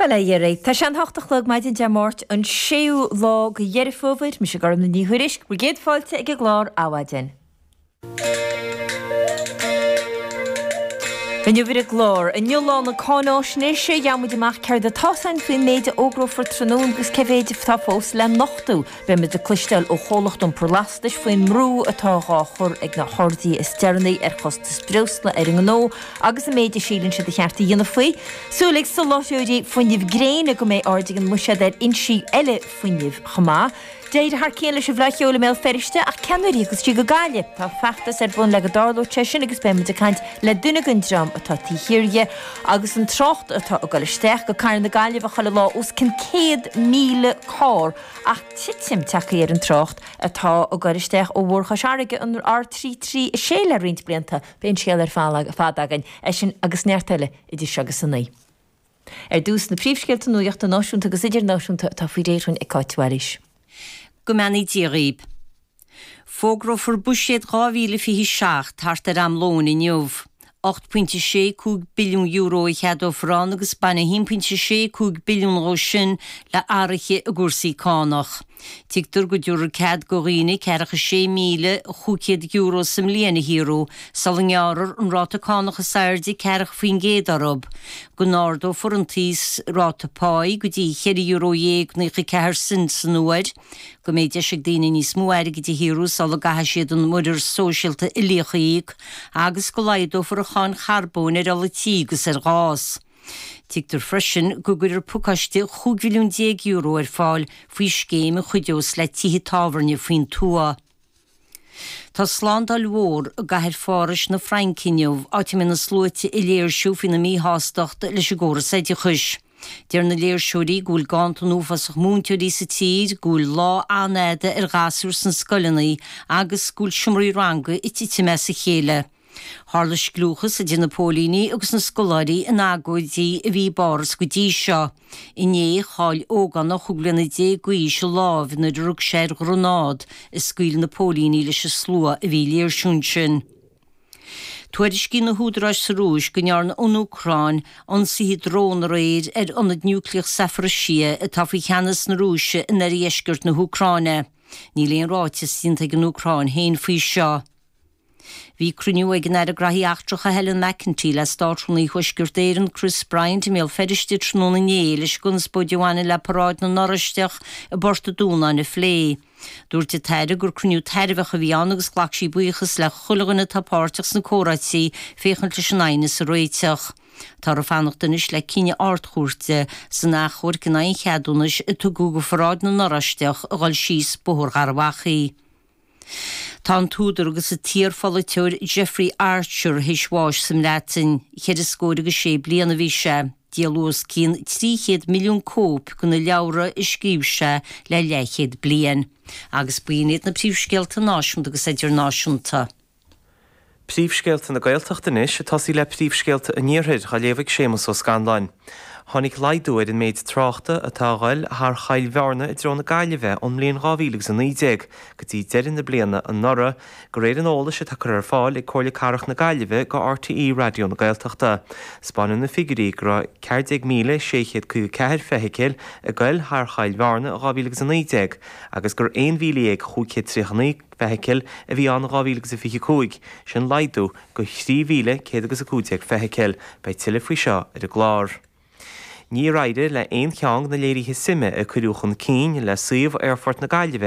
Bailigh ar aghaidh. Tá sé a hocht a chlog maidin Dé Máirt, an séú lá de Dheireadh Fómhair. Mise Gormfhlaith Ní Thuairisg, bhur gcéad fáilte ag an gclár Adhmhaidin. Inniu ar an gclár, Inniu Lá na Cáinaisnéise, gheobhaidh muid amach céard atá ar eolas againn faoin méid a fhógrófar tráthnóna agus cé mhéid atá fós le nochtadh. Beimid ag cloisteáil ó Chomhlacht Iompair Lastais faoin mbrú atá dhá chur ag na harduithe is deireanaí ar chostas breosla ar a ngnó agus an méid a síleann siad ba cheart a dhéanamh faoi. Súil ag soláthróirí fuinnimh gréine go mbeidh aird ag an mbuiséad ar fhoinsí eile fuinnimh chomh maith. D'éirigh thar cionn leis an bhFleá Cheoil i mBéal Feirste ach cén uair a thiocfas sí go Gaillimh. Tá feachtas ar bun le go dtarlóidh sé sin agus beimid ag caint le duine den dream atá taobh thiar dhó agus an trácht atá ag dul isteach go cathair na Gaillimhe chuile lá os cionn 100,000 carr ach titim tagthaí ar an trácht atá ag goil isteach Bóthar Chois Fharraige, an R336, le roinnt blianta. Beidh an scéal ar fad againn, é sin agus neart eile idir seo agus a naoi. Ar dtús, na príomhscéalta nuachta náisiúnta agus idirnáisiúnta atá faoi réir againn ag Cáit Mhaoilís. Go mbeannaí Dia dhaoib. Fógrófar Buiséad 2027 thart ar am lóin inniu. €8.65 billiún a cheadófar ann agus baineann €1.65 billiún dhó sin le athruithe i gcúrsaí cánach. Tuigtear go dtabharfar cead do dhaoine €46,500 sa mbliain a shaothrú sula ngearrfar an ráta cánach is airde 40 faoin gcéad orthu, go n-ardófar an t-íosráta páí go dtí cheithre euro dhéag naocha ceathair cent san uair, go mbeidh deis ag daoine níos mó airgid a shaothrú sula gcaithfidh siad an Muirear Sóisialta Uilíoch a íoc agus go laghdófar an cháin charbóin ar ola tí agus ar ghás. Tuigtear freisin go gcuirfear pacáiste €15 mhilliún ar fáil faoi scéim a chuideos le tithe tábhairne faoin tuath. Tá slándáil mhór i gcathair Phárais na Fraince inniu, áit a mbeidh na sluaite ag léirsiú faoina míshástacht leis an gcóras oideachais. Deir na léirseoirí go bhfuil ganntan uafásach múinteoirí sa tír, go bhfuil lá an-fhada ar ghasúir sna scoileanna agus go bhfuil seomraí ranga ag titim as a chéile. Tharla scliúchas idir na póilíní agus na scoláirí in agóidí a bhí i bPáras go dtí seo. Inné, chaill ógánach chúig bliana déag d'aois a lámh nuair a rug sé ar ghreanád a scaoil na póilíní leis an slua a bhí ag léirsiú ansin. Tuairiscíonn na húdaráis sa Rúis go ndearna an Úcráin ionsaithe drón aréir ar ionad niúcléach Zaporizhzhia atá faoi cheannas na Rúise in oirdheisceart na hÚcráine. Níl aon ráiteas déanta ag an Úcráin féin faoi seo. Bhí cruinniú ag an Aire Graithí Eachtracha Helen McEntee le Státrúnaí Thuaisceart Éireann Chris Bryant i mBéal Feirste tráthnóna inné leis an gconspóid a bhaineann le paráid na nOráisteach i bPort a' Dúnáin a phlé. Dúirt an tAire gur cruinniú tairbheach a bhí ann agus ghlac sí buíochas le chuile dhuine atá páirteach sna comhráití féachaint leis an aighneas a réiteach. Táthar ag fanacht anois le cinneadh Ard-Chúirte san achomharc in aghaidh an cheadúnais a tugadh do pharáid na nOráisteach a dhul síos Bóthar Gharbhachaidh. Tá an t-údar agus an t-iar-pholaiteoir Jeffrey Archer théis bháis sa mBreatain. Ceithre scór agus sé bliain a bhí sé. Díoladh os cionn 300 milliún cóip de na leabhra a scríobh sé le leathchéad bliain. Agus b'in iad na príomhscéalta náisiúnta agus idirnáisiúnta. Príomhscéalta na Gaeltachta anois ag tosaí le príomhscéalta an Iarthair dhá léamh ag Séamus Ó Scanláin. Tháinig laghdú ar an méid tráchta atá ag goil thar Choill Bhearna i dtreo na Gaillimhe ón mbliain 2019 go dtí deireadh na bliana anuraidh, de réir an eolais atá curtha ar fáil ag Comhairle Cathrach na Gaillimhe go RTÉ Raidió na Gaeltachta. Spáineann na figiúirí go raibh 14,654 feithicil ag goil thar Choill Bhearna in 2019 agus gurbh 11,539 feithicil a bhí ann in 2025, sin laghdú de 3,100 agus 15 feithicil. Beidh tuilleadh faoi seo ar an gclár. Níor éirigh le haon cheann de na léirithe suime a cuireadh chun cinn le suíomh Aerfort na Gaillimhe